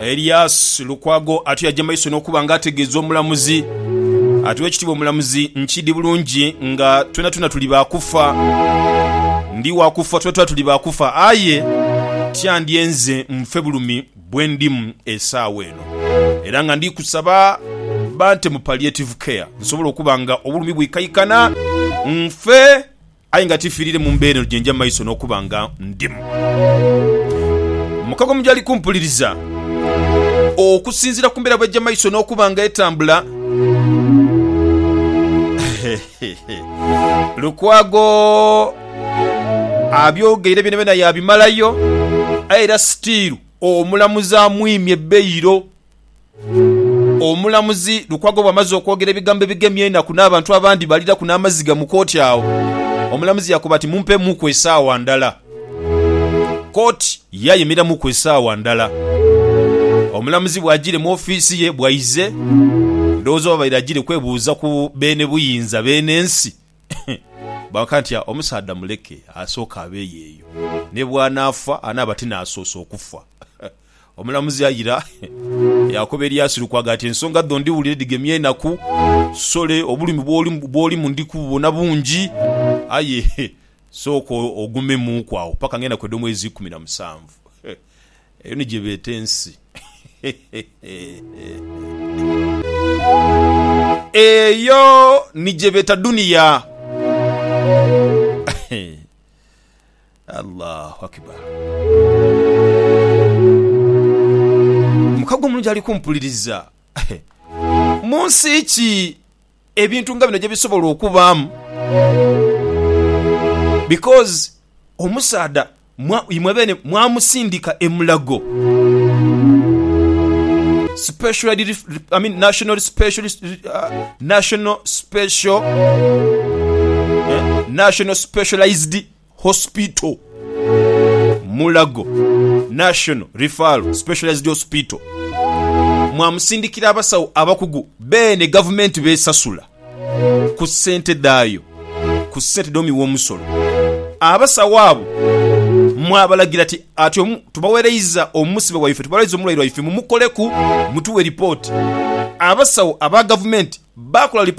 Elias Lukwago ati aja maiso n'okuba nga ategeeza omulamuzi ati Owekitiibwa omulamuzi nkiidi bulungi nga twenatwena tuli ba kufa, ndi wa kufa twenatwena tuli ba kufa aye tiyandye nze nfe bulumi. bwe ndimu esaawa eno. Era nga ndi kusaba bante mu palliative care nsobole okuba nga obulumi bwikaikana nfe aye nga tifiriire mu mbeera eno gye nja mu maiso n'okuba nga ndimu. Mukago mu gyali kumpuliriza. Okusinziira ku mbeera bw'ejja mu maiso n'okuba nga etambula, Lukwago abyogeire byonabyona yabimalayo aye era sitiiru omulamuzi amwimye beyiro. Omulamuzi Lukwago bw'amaze okwogera ebigambo ebigemya enaku n'abantu abandi baliraku n'amaziga mu kooti agho, omulamuzi yakoba ati, Mumpeemuuku esaawa ndala. Kooti yayemeramuku esaawa ndala. Omulamuzi bw'ajiire mu ofiisi ye bwaize, ndowooza oba abaire ajiire kwebuuza ku beene buyinza, beene nsi. Baakoba nti, Omusaadha muleke asooke abeeyo eyo. Ni bw'anaafa anaaba ti n'asoose okufa. Omulamuzi aira yaakoba eri Asiru kwagamba nti, Ensonga dho ndhiwulire dhigemye enaku. Sole, obulumi bw'olimu ndi kububona bungi. Aye Sooka ogumemuuku agho paka ng'enaku edh'omwezi ikumi na musanvu. Eyo ni gye beeta ensi. Eyo ni gye beeta duniya. Allahu Akibar! Mukago omulungi ali kumpuliriza, mu nsi ki? ebintu nga bino gyebisobola okubaamu because omusaadha imwe beene mwamusindika e Mulago National Specialised Hospital, Mulago National Referral Specialised Hospital mwamusindikira abasawo abakugu beene Gavumenti b'esasula ku ssente dhaayo ku ssente dh'omuwi w'omusolo. Abasawo abo mwabalagira ti, Ati tubawereiza omusibe waife, tubalwaiza omulwaire waife mumukoleku, mutuwe lipooti. Abasawo aba Gavumenti baakola lipooti.